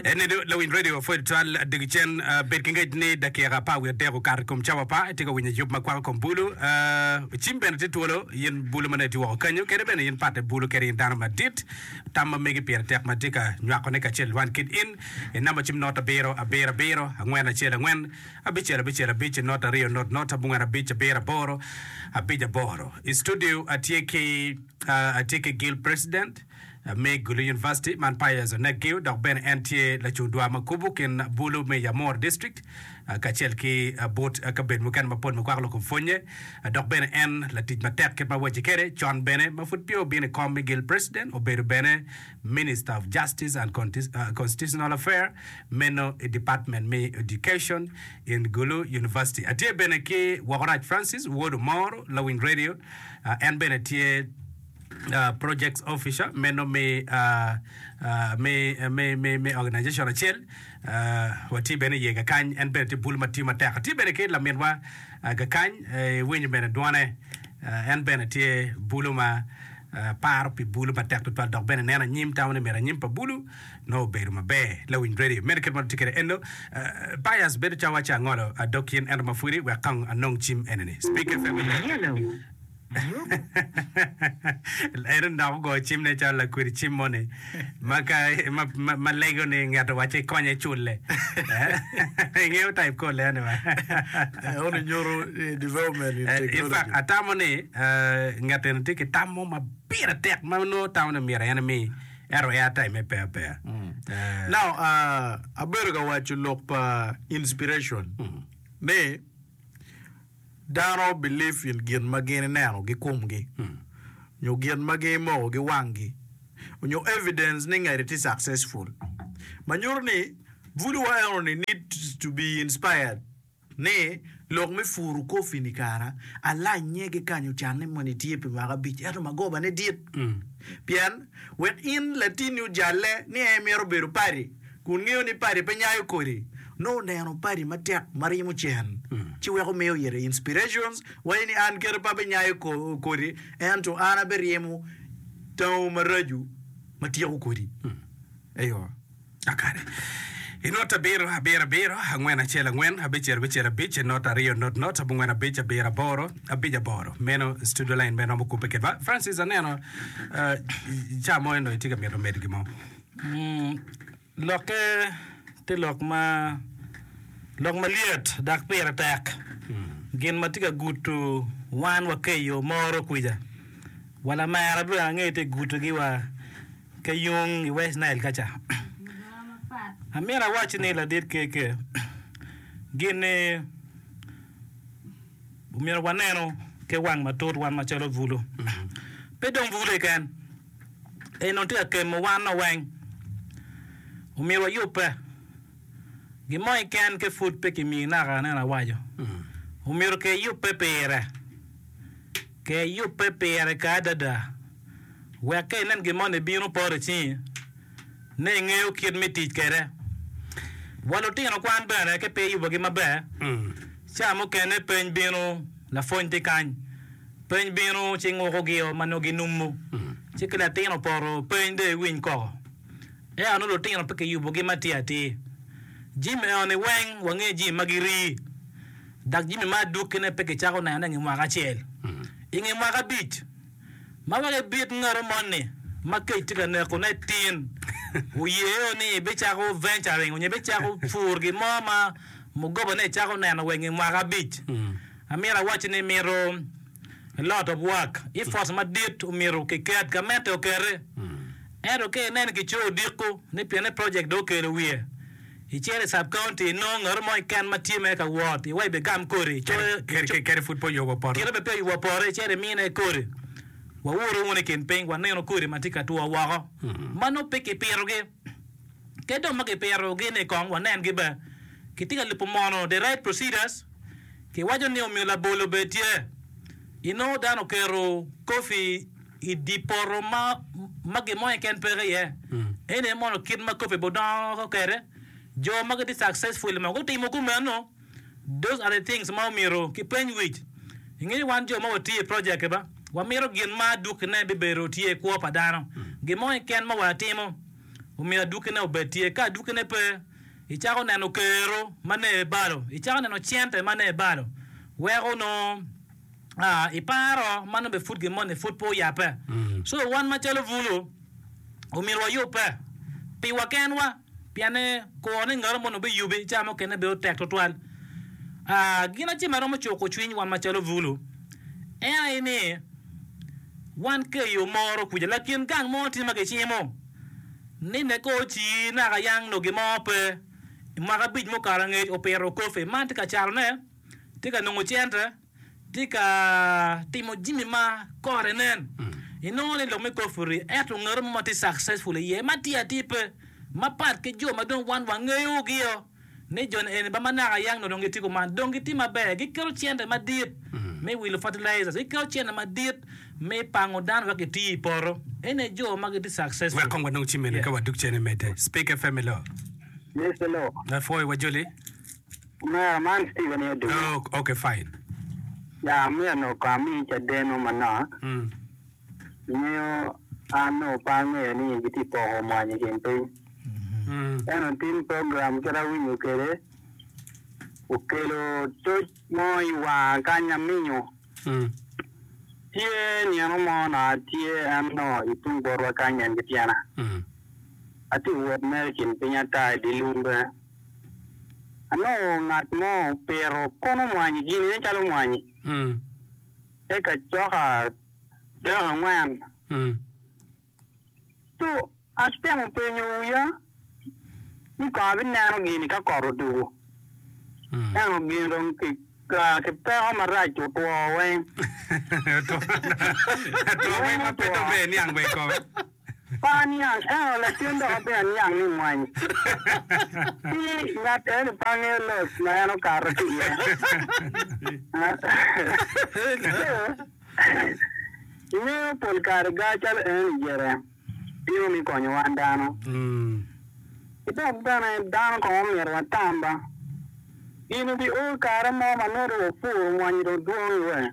En ni lawiny radio pwod twal dog cen bed ki ngec ni dakika apar wiye adek okato i kom cawa pa itye ka winyo yub ma kwako kom bulu. Cim bene tye twolo in bulu ma nongo itye woko kanyo kede bene in patte bulu kede in dano madit. Tam ma megi pire tek ma itye ka nywakone kacel i lwan kit in i namba cim not abiro abiro abiro angwen acel angwen abicel abicel abic not aryo not not abongwen abic abiro aboro abic aboro. I studio atye ki atye ki Gil President. Ameg lu University man Pius Onegiw dok bene en tye lacung dwa ma kubu kin bulu me Yamor District kacel ki but kabedo mukene mapol ma kwako loko pwonye dok bene en latic matek kit ma wacce kede con bene ma pud peya obino i kom me gil President obedo bene Minister of Justice and Constitutional Affair meno i Department me Education in Gulu University. Atye bene ki Wokorac Francis, Wod Omoro, lawiny radio, en bene tye projects officer meno me organization acel watye bene iye kakany en bene tye bul ma tiyo matek atye bene ki laminwa kakany iwinyo bene dwone en bene tye bulu ma paro pi bulu matek tutwal dok bene neno anyim tamo ni myero anyim pa bulu nongo obedo maber lawiny redio meno kit ma watye kwede eno bias bedo calo waco angolo dok yen ento ma pwodi wek kong anong cim enini. En dok ogoyo cimne calo lakwedi cim moni ma lego ni ngat owacce ikonye cule. Ingeyo type kor leni wa. Onongo nyuto development in technology. In fact, atamo ni ngat eni tye ki tam mo ma pire tek ma nongo atamo ni myero en emi ento air time-me pe apeya. Now, abedo ka waco lok pa inspiration ni Dano believe in gin ma gin ineno gi komgi nyo gin ma gin imoko gi wanggi onyo evidence ni ngeri tye successful ma nyuto ni bulu wa eno ni need to be inspired ni lok me puru coffee ni kara alanye ki kanyo canne moni tye pi mwaka abic ento magoba ne dit pien wek in latini ojalle ni en mito bedo paddy Kun ngeyo ni padi pe nyayo kodi, nongo neno padi matek ma ryemo cen ci weko miyo ite inspirations waco ni an keta pe abenyayo kodi ento an aberyemo tango maraco ma tyeko kodi. Eyo. Akare. I not abiro, abiro, abiro, angwen, acel, angwen, abicel, abicel, abic, not, aryo, not, not, abongwen, abic, abiro, aboro, abic, aboro. Meno studio line me romo kubbe kedwa. Francis, aneno ah, ca mo eno itye ka mito medo gin mo. Lokke tye lok ma lok malyet dok pire tek. Gin ma tye ka guto wan wa ka i yo moro kwica, wa lamera dong ange tye ka gutogi wa ka yung i West Nile ka ca. Amyero awacci ni ladit keke, gin-ni omyero wanenu ki wang matut wan macalo bulu. Pe dong bulu keken, Eno tye ka kemo wanno weng. Omyero wayubbe. Gin mo keken ki pud pe kimiyi naka aneno awaco. Omyero ker yubbe pire. Ker yubbe pire kare adada. Wek ka inen gin moni bino poto icingi. ni engeyo kit me tic kwede. Wa lutino kwan bene ka pe iyubogi maber, ca mukene peny bino, lapwony tye kany, peny bino ci ngukogio ma nongo ginumu, ci ka latin opoto peny dong iwiny koko. Ento nongo lutino pe kiyubogi ma tye atir. Jimi eno-ni weng wangeyo jimi ma girii, dok jimi ma adukkine pe kicako nenone i nge mwaka acel, i nge mwaka abic. Ma wek ibit ngero moni ma kec tye ka neko ne tin, wuye o ni ibicako venturing onyo ibicako pur gin mo ma mugoba ne icako neno weng i mwaka abic. Amyero awacci ni mito a lot of work, effort madit omito ki ket ka mette okete. Ento ka inen ki co odiko ni pienne project do okelo wiye, I cere sub county inongo ngat mo keken ma tye mere ka wot iwa ibe gam kodi coyo kit kere pud pe oyo wa poto kite ma pe oyo wa poto i cere imine kodi wa uru wunu i kin piny wa neno kodi ma tye ka two woko ma nongo pe ki pito gi ke dong ma ki pito gi ni kong wa nen gi be ki tye ka lubo mono the right procedures ki waco ni omiyo labolo be tye inongo dano oketo coffee I dye poto ma ma gin mo keken peke iye, eni aye mono kit ma kop-pe budongo kwede. Jo ma gitye successful ma gutimo kumeno, those are the things ma omyero kipeny wic. Inge ni wan jo ma watye i project-ti ba, wamito gin ma adwogine bibedo tye i kwo pa dano. Gin mo keken ma watimo omyero adwogine obed tye. Ka adwogine pe, icako neno kero ma ne balo, icako neno cente ma ne balo, weko nongo. Ah, iparo, man nongo bene pud gin moni pud pe oyabbe. So, wan macalo bulu, omyero wayubbe piwa kenwa, pienni kuro ni ngat mo onongo biyubi, ca mukene bedo tek twatwal. Ah, gin acel ma romo cuko cwiny wan macalo bulu, en aye ni, wan ka i yo moro kwica, lakin gang mo tye ma gicimo ni neka oci naka yang nongo gin mo pe, mwaka abic mukato angec opito coffee, man tye ka catone, tye ka nongo cente, tye ka timo jami ma kore nen, inongo ni lok me koffi-ri, ento ngati mo ma tye successful iye ma tye atir pe, mapat ki jo ma dong wan wangeyogi-o, ni jo eni ba ma naka yang nongo dong gitye kuman, dong gitye maber, giketo cente madit me wilo fertilizers, giketo cente madit me pango dano wek giti i poto, eni aye jo ma gitye successful. Wek kong wanong jami mene ka wadok cene medde. Speak FM hello. Yes, hello. Lapwoyo wa joli. Omera man Steven aye odunya. Oh, okay fine. Ya, omyero onongo kong amiyi cadeno manok. Mm. Ingeyo, an onongo pe angeyo ni gitye ka poko mwanyi i kin piny. Mm. Eno tin program kit awinyo kwede okelo toc mo i wanga kany aminyo. Mm. Tye nino mo onongo atye en onongo i tung botwa kany en ki tyena. Mm. Atye ka wot mere i kin piny ata i dye lum bene. anongo ngat mo opito kono mwanyi, ginine calo mwanyi, te ka coka dek angwen. Cu atemo penyo wiya ni kong abineno gini ka kot odugo, ento gin dong ki peko marac otwo weng. Par niang, ka o lacen dok ape aniang ni mwany tye i ngat eni pe angeyo loc ma en okato ki iye. Ento, ingeyo pol kare gar calo eni gire bino me konyo wan dano. Ki dok bene dano kong omyero watam ba Gin obiol kare mo ma nongo dong opuro mwanyi dong dwong i wee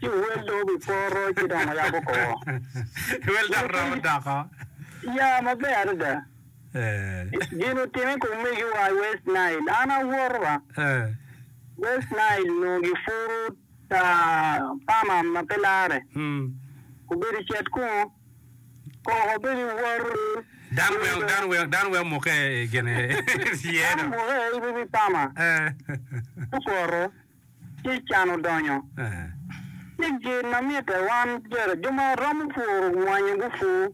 ci owel dong obi poro ci dong oyabo kor Wel dok romo doko. ya maber adada gin otime kom megi wa i west nile an awoto ba west nile nongo gipuro Ta pama ma pe larre, obedo i cet kungo, koko obedo i woro. Dano weng omukke i gin iye. Dano omukke i wi pama, ci okworo, ci can odonyo. Ci gin ma mitte wan jo ma romo pworo mwanyo gupur,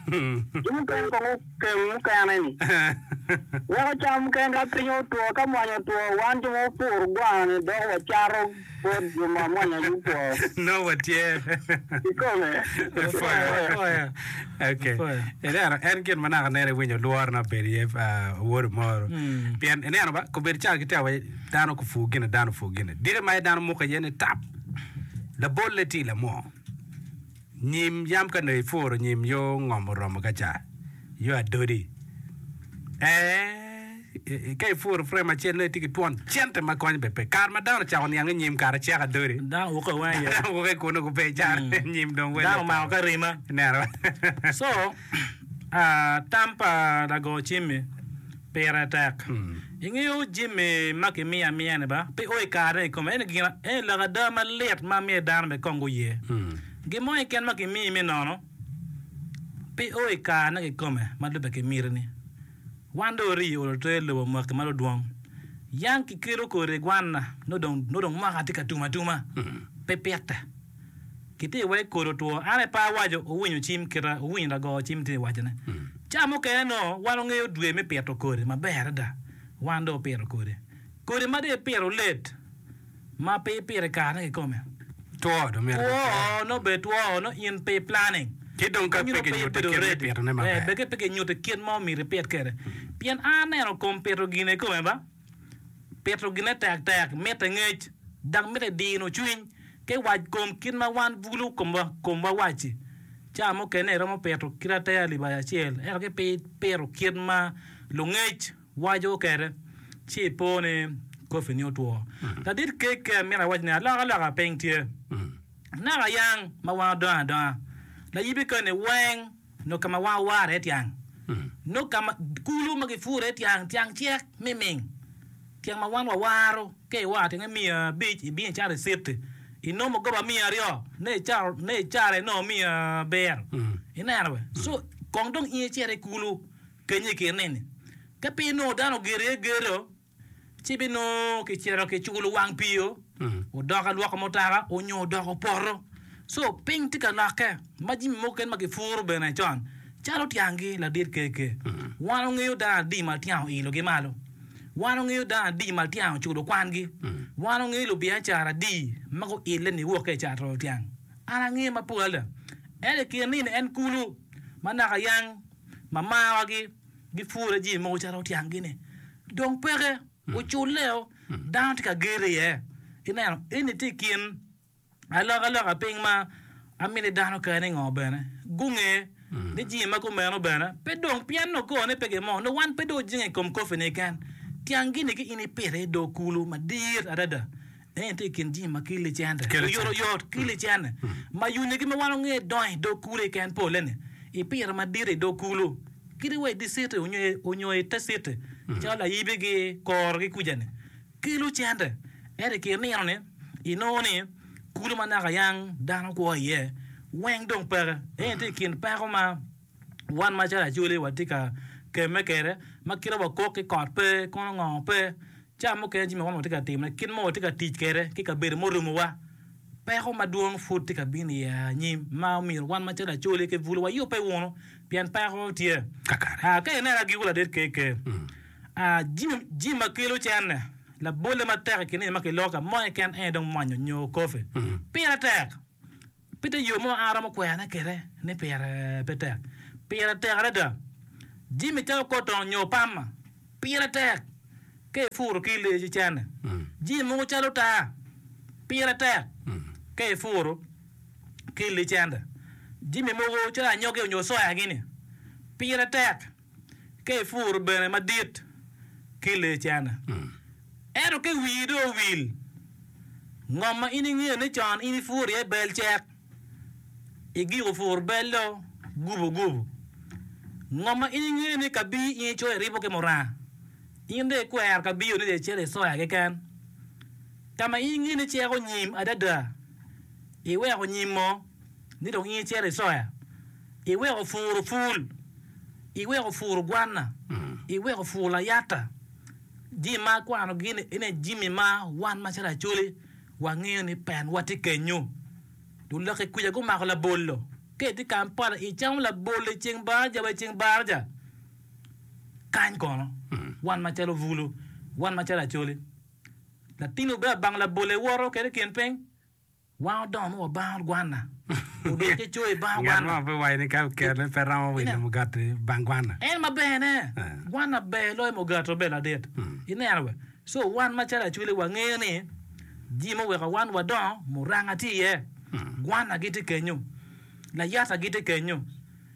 jo mukene kong. keng mukene-ni. Weko cam mukene ka piny otwo, ka mwanya otwo, wan jo ma wapuro gwana-ni dok wacato bot jo ma mwanya gutwo. Nongo watye. Kikome. Ineno, en gin ma naka nene iwinyo lworo na obedo iye awodo moro. Pien ineno ba, kobedo cawa ki cawa waci dano kupur gin ni dano opur gin ni. Diki ma aye dano mukke iye ni tap, labolle tye lamo. Nyim yam ka nongo ipuro nyim yo ngom oromo ka ca, yo adodi. Ee, ka ipuro frem acel nongo itye ki twon cente ma konyo bene pe. Kare ma dano ocako niang ni nyim kare cek adodi, Dano wuko i wanga yat. dano wuko i kuno gupe icara nyim dong welle Dano omako ki arima. Nera. So, Tam pa lago Jimmy pire tek. Ingeyo Jimmy ma kimiyo amiya-ni ba? Pe o i kare-ni i kome. Ento eni lok ada malit ma myero dano bene kong guye. Gin mo keken ma kimiyi me nono pe o i karene kikome ma lubbe ki mitini. Wan dong ori olo ter lobo mwaki ma ludwong. Yam kikelo kodi i gwanna nongo dong mwaka tye ka tum atuma. Pe pite. Giti wek kodi otwo. An epa awaco owinyo cim kita, owinyo lago cim ti wacone. Ca mukene nongo wan ongeyo dwe me pito kodi maber adada. Wan do opito kodi. Kodi ma do ipito let ma pe ipito i karene kikome. Two do mere Two nongo obedo two nongo in pe iplanning. Ci dong ka pe kinyuti kit me pitone maber. Beke pe kinyuti kit ma omyero ipit kede. Pien an aneno kom pito gine kikome ba. Pito gine tektek mitte ngec, dok mitte dino cwiny ki wac kom kit ma wan bulu komwa wac-ci. Cawa mukene iromo pito kit ateya libati acel ento ki pe ipito kit ma lungec waco kwede ci ipo ni kofini otwo. Ladit kekki amito awac ni alokaloka piny tye naka yang ma wan odongo adonga. Layibi koni weng. Nongo ka ma wang owar iye tyang. Nongo ka ma kulu ma gipuro iye tyang, tyang cek miming. Tyang ma wan wawaro, ka iwaro tyenge miya abic, ibino icato i citi, inongo mugoba miya aryo, ne icato, ne icato inongo miya abiro. Ineno be? So, kong dong in icit i kulu, peny i kin nini, ka pe inongo dano ogeto iye geto, ci binongo kicito ki culo wang pii-o, odoko alwoka mutaka, onyo odoko poto. So, piny tye ka lokke ma jami mogo keken ma kipuro bene con calo tyangi ladit keke. Wan wangeyo dano adi ma tyangi oilo gi malo? Wan wangeyo dano adi ma tyangi oculo kwangi? Wan wangeyo lubiacara adi ma guille niwok ka i cato tyang? An angeye mapol adada. Ento i kine-ni en kulu ma naka yang, ma marwa-gi. Gipwora jami mogo calo otyang-gi-ni dong peke, oculleo dano tye ka geto iye. Ineno, eni tye i kin alokaloka piny ma amini dano kare ningo bene gunge ni jami ma kumeno bene pe dong pien nongo kone pe gimo, nongo wan pe dong ojenge i kom koffi-ni keken, tyang-gi-ni ki in ipite i dog kulu madit adada En tye i kin jing ma ki licene, oyotoyot ki licene, ma yunyogi ma wano nge donyo i dog kulu keken pole-ni i pire madit i dog kulu, kadi wa i dye citi onyo i te citi, calo layibigi, koro ki kuja-ni, ki lucene. Ento i kin nino-ni, inongo ni kulu ma naka yang dano kwo iye weng dong peke. En tye i kin peko ma. Wan macalo Acholi watye ka kemme kwede ma kite ma wakok ki kot pe, kono ngo pe. Cawa mukene jami ma wan watye ka timone, kit ma watye ka tic kwede ki kabedo murumowa, peko madwong pud tye ka bino iye anyim ma omyero wan macalo Acholi ki Bulu wayubbe wunu pien peko tye. Ka ineno agikku ladit KK, jami ma kelo cente, labolle matek i kin eni ma kiloko ka mo keken en aye dong mwanyo nyo coffee. Pire tek. Pe tye yo mo ma aromo kwerane kwede ni pire pe tek. Pire tek adada. Jimmy cako kor tong nyo pama. Pire tek. Ka ipuro ki leyi ci cene. Jing mogo calo taa. Pire tek. Ka ipuro ki licende. Jimmy mogo calo anyogi onyo soya gini. Pire tek. Ka ipuro bene madit ki lee cene, ento ka wii dong owil, ngom ma in ingeyo ni con in ipuro iye bel cek, igiko pur bel do gubo gubo. Ngom ma in ingeyo ni ka bi in icoyo iribo ki muranga, in dong ikwero ka biyo ni dong icito i soya keken. Ka ma in ingeyo ni cek onyim adada, iweko nyim mo ni dong in icito i soya. Iweko puro pul, iweko puro gwanna, iweko puro layata, jami ma akwanogi ni ene jami ma wan macalo Acholi wangeyo ni pen watye kenyo. Dong lok i kwija gumako labolo. Ka itye i Kampala icamo labolo i ceng baraja wa i ceng baraja, kany kono wan macalo bulu, wan macalo Acholi, latinni obedo abang labolo iwoto kwede i kin piny. Wan odomo wa bang gwanna. Odwoke coyo i bang gwanna. Ngat mo pe waco ni ka kerone pe romo wilo mugati bang gwanna. En ma bene, gwanna ber loyo mugati obe ladit. Ineno be? So wan macalo acwili wangeyo ni ji ma oweko wan wadongo muranga tye iye. Gwanna gitye kenyo. Layata gitye kenyo.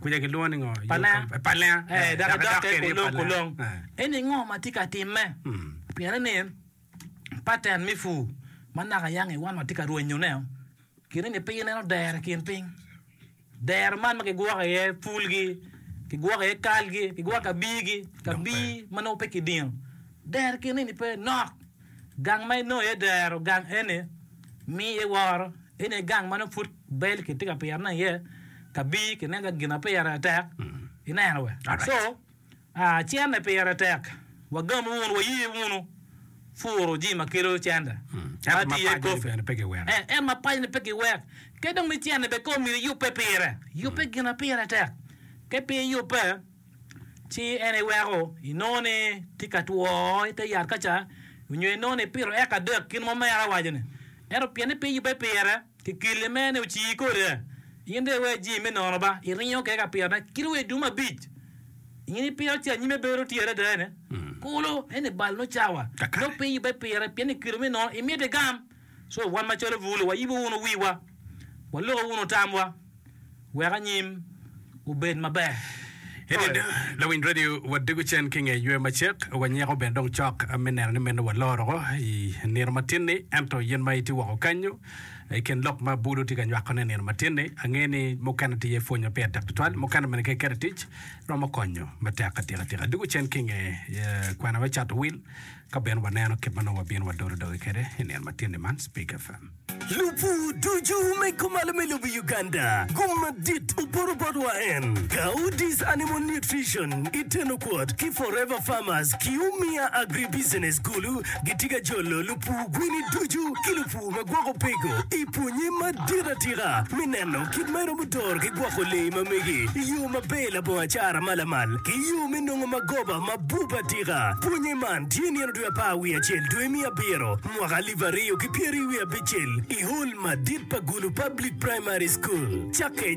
Kwija kilwongo ni ngo? Palenga. Yo ka- Palenga. Eh, dok Dok idokke kwede i kulong palenga. kulong. Eh. Eni ngo ma tye ka timme? Mm. Pienni ni pattern me pur ma naka yang i wan watye ka rwenyone, kine ni pe ineno dero i kin piny. Dero man ma kigwoko iye pulgi, kigwoko iye kalgi, kigwoko kabirgi, kabir ma nongo pe kidino. Dero kine ni pe nok. Gang ma inongo iye dero gang eni miyo iye woro. Eni aye gang ma nongo pud bel kitye ka pire nongo iye ka bii kineno ka gin ma pire tek ineno we. So cente pire tek wagam wunu waye wunu puro jami ma kelo cente ma tye iye coffee ento ma paco ni pe giwek. Kadi dong ni cente bene kong omyero iyubbe pire yubbe gin ma pire tek ka pe iyubbe. ci en iweko inongo ni tye ka two i te yat ka ca, onyo inongo ni ipito eka adek gin ma mere awaco ni. Ento pien ni pe yubbe pire, ki keli mere ni oci kode, in dong iwe jing me nono ba, iringo kede ka pito ne, kit wa i dum abic in ipito ci anyime bedo tye adada ene, kulu eni bal nyo cawa, nyo pe yubbe pire, pien ni kelo me nono imito igam. So wan macalo bulu wayibo wunu wiwa, waluko wunu tamwa wek anyim obed maber. Lawiny radio, wadego cen ki nge ywe macek, wanyiko bene dong cok me neno ni meno waloro woko i nino matin-ni. Ento in ma itye woko kenyu i kin lok ma bulu tye ka nywakone i nino matin-ni, angeyo ni mukene tye iye pwony ma pire tek tutwal, mukene bene ka iketo i tic romo konyo matek atika tika. Dwogo cen ki nge kwena me cato wil. Ka bene waneno kit ma nongo wabino wadodo doge kwede i nino matini man, Speak FM. Lubu ducu me kumalo me lobo Uganda gum madit oporo botwa en Coudis Animal Nutrition i tenokot ki Forever Farmers ki Umia Agribusiness kulu gitye ka jolo lupu gwini ducu ki lupu ma gwoko peko i pwonye madit atika me neno kit ma iromo doro ki gwoko lee ma mege i yo maber labongo acara ma lamal ki yo me nongo magoba ma Buk atika, Pwonye man tye nino dwe apar wiye acel dwe me abiro mwaka alip aryo ki pyeraryo wiye abicel i Hall madit pa Gulu Public Primary School. Cakke.